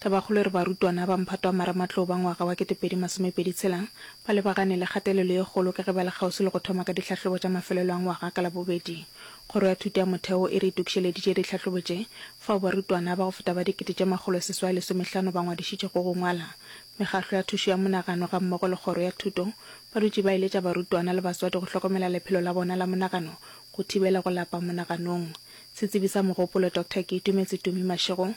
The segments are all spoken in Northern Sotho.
Tabakgolo e re barutwana ba mphato wa marematlou ba ngwaga wa ketepedi masomepedi tshela ba lebagane le kgatelelo ye kgolo ka ge ba le kgauswi le go thoma ka dihlahlobo tša mafelelo a ngwaga ka Labobedi. Kgoro ya Thuto ya Motheo e re itokišeleditše dihlahlobo tše fao barutwana ba go feta ba dikete tše makgolo seswai lesomehlano ba ngwadišitšego go ngwala. Mekgahlo ya thušo ya monagano gammogo le kgoro ya thuto ba dutše ba eletša barutwana le batswadi go hlokomela lephelo la bona la monagano go thibela go lapa monaganong. Setsebi sa mogopolo Doctor Keitumetse Tumi Mashego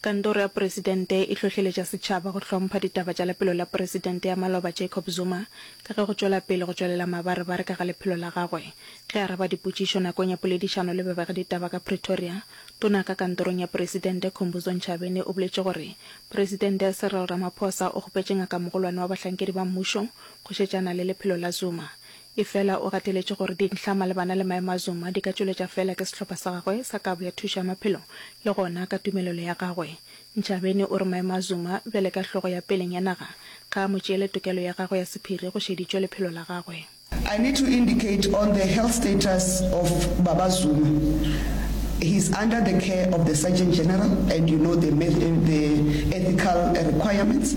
Kantoro ya Presidente e hlohleletša setšhaba go hlompha ditaba tša lephelo la Presidente ya maloba Jacob Zuma ka ge go tšwela pele go tšwelela mabarebare ka ga lephelo la gagwe. Ge a araba dipotšišo nakong ya poledišano le babegeditaba ka Pretoria, Tona ka kantorong ya Presidente Khumbudzo Ntshavheni o boletše gore Presidente Cyril Ramaphosa o kgopetše ngakamogolwane wa bahlankedi ba mmušo go šetšana le lephelo la Zuma Efela o gateletše gore dintlha malebana le maemo a Zuma di ka tšweletša feela ke sehlopha sa gagwe sa Kabo ya Thušo ya Maphelo le gona ka tumelelo ya gagwe. Ntshabeni o re maemo a Zuma bjale ka hlogo ya peleng ya naga ga a mo tšeele tokelo ya gagwe ya sephiri go šeditšwe lephelo la gagwe. I need to indicate on the health status of Baba Zuma, he is under the care of the Surgeon General and you know the ethical requirements.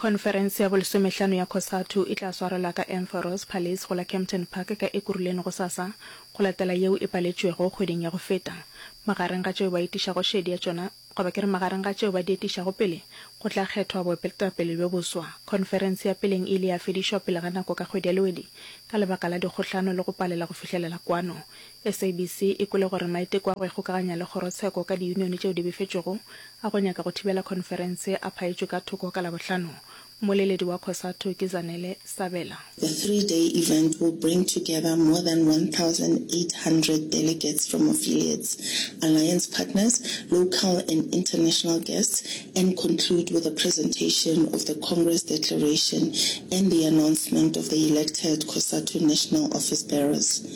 Khonferense ya bolesomehlano ya Cosatu e tla swarelwa ka Emperors Palace go la Kempton Park ka Ekurhuleni gosasa, go latela yeo e paletšwego kgweding ya go feta. Magareng ga tšeo ba etišago šedi ya tšona, goba ke re magareng ga tšeo ba di etišago pele, go tla kgethwa boepeletapele bjo boswa. Khonferense ya peleng e ile ya fedišwa pele ga nako ka kgwedi ya Lwedi ka lebaka la dikgohlano le go palela go fihlelela kwano SABC e kwele gore maiteko a go ikgokaganya le kgorotsheko ka diyunione tšeo di befetšwego a go nyaka go thibela khonferense a phaetšwe ka thoko ka Labohlano. Mmoleledi wa Cosatu ke Zanele Sabela. The three day event will bring together more than 1,800 delegates from affiliates, alliance partners, local and international guests and conclude with a presentation of the Congress declaration and the announcement of the elected Cosatu National Office Bearers.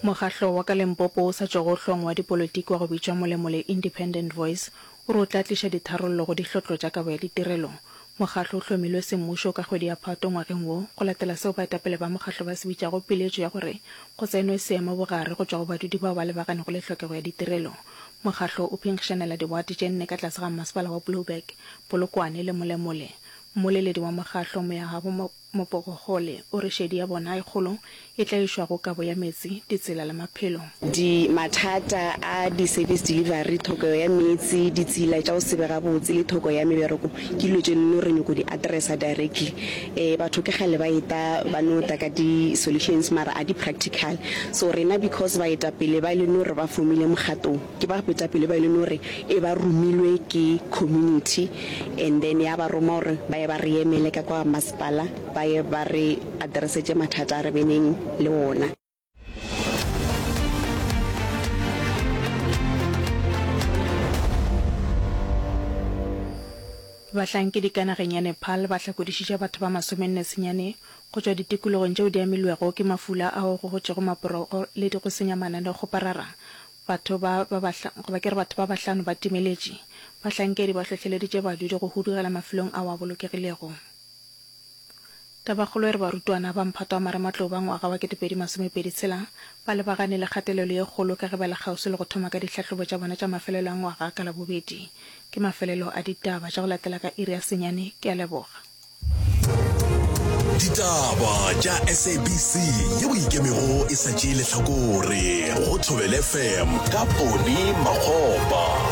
Mokgahlo wa ka Limpopo o sa tšwago hlong wa dipolotiki wa go bitšwa Molemole Independent Voice o re o tla tliša ditharollo go dihlotlo tša kabo ya ditirelo. Mokgahlo o hlomilwe semmušo ka kgwedi ya Phato ngwageng wo go latela seo baetapele ba mokgahlo ba se bitšago piletšo ya gore go tsenwe seemobogare go tšwa go badudi bao ba lebagannego le tlhokego ya ditirelo. Mokgahlo o phenkgišanela diwate tše nne ka tlase ga mmasepala wa Blouberg, Polokwane le Molemole. Mmoleledi wa mokgahlo, Moyagabo Mopogogole, o re šedi ya bona e kgolo e tlaišwa go kabo ya meetse, ditsela le maphelo. Di mathata a di service delivery, thokego ya meetse, ditsela tša go se be gabotse le thoko ya mebereko ke dilo tše nno re nyoko di addressa directly. E, batho ke kgale ba eta ba no ta ka di solutions mara a di practical. So rena because baetapele ba e le no re ba fomile mogatong ke ba boetapele ba e le no re e ba romilwe ke community and then ya ba roma gore ba ye ba re emele ka kwa masepala ba ye ba re addresetse mathata a re beneng le ona. Bahlankedi ka nageng ya Nepal ba hlakodišitše batho ba masomenne senyane go tšwa ditikologong tšeo di amilwego ke mafula ao go gotšego maporogo le di go senya mana le go parara. Batho ba ba bahlano, goba ke re batho ba bahlano ba timeletše. Bahlankedi ba hlohleleditše badudi go hudugela mafelong ao a bolokegilego. Tabakgolo e re barutwana ba mphato wa marematlou ba ngwaga wa 2026 ba lebagane le kgatelelo ye kgolo ka ge ba le kgauswi le go thoma ka dihlahlobo tša bona tša mafelelo a ngwaga ka Labobedi. Ke mafelelo a ditaba tša go latela ka iri ya senyane. Ke a leboga. Ditaba tša SABC yeo e ikemego e sa tšee lehlakore go Thobela FM ka Ponny Makgopa.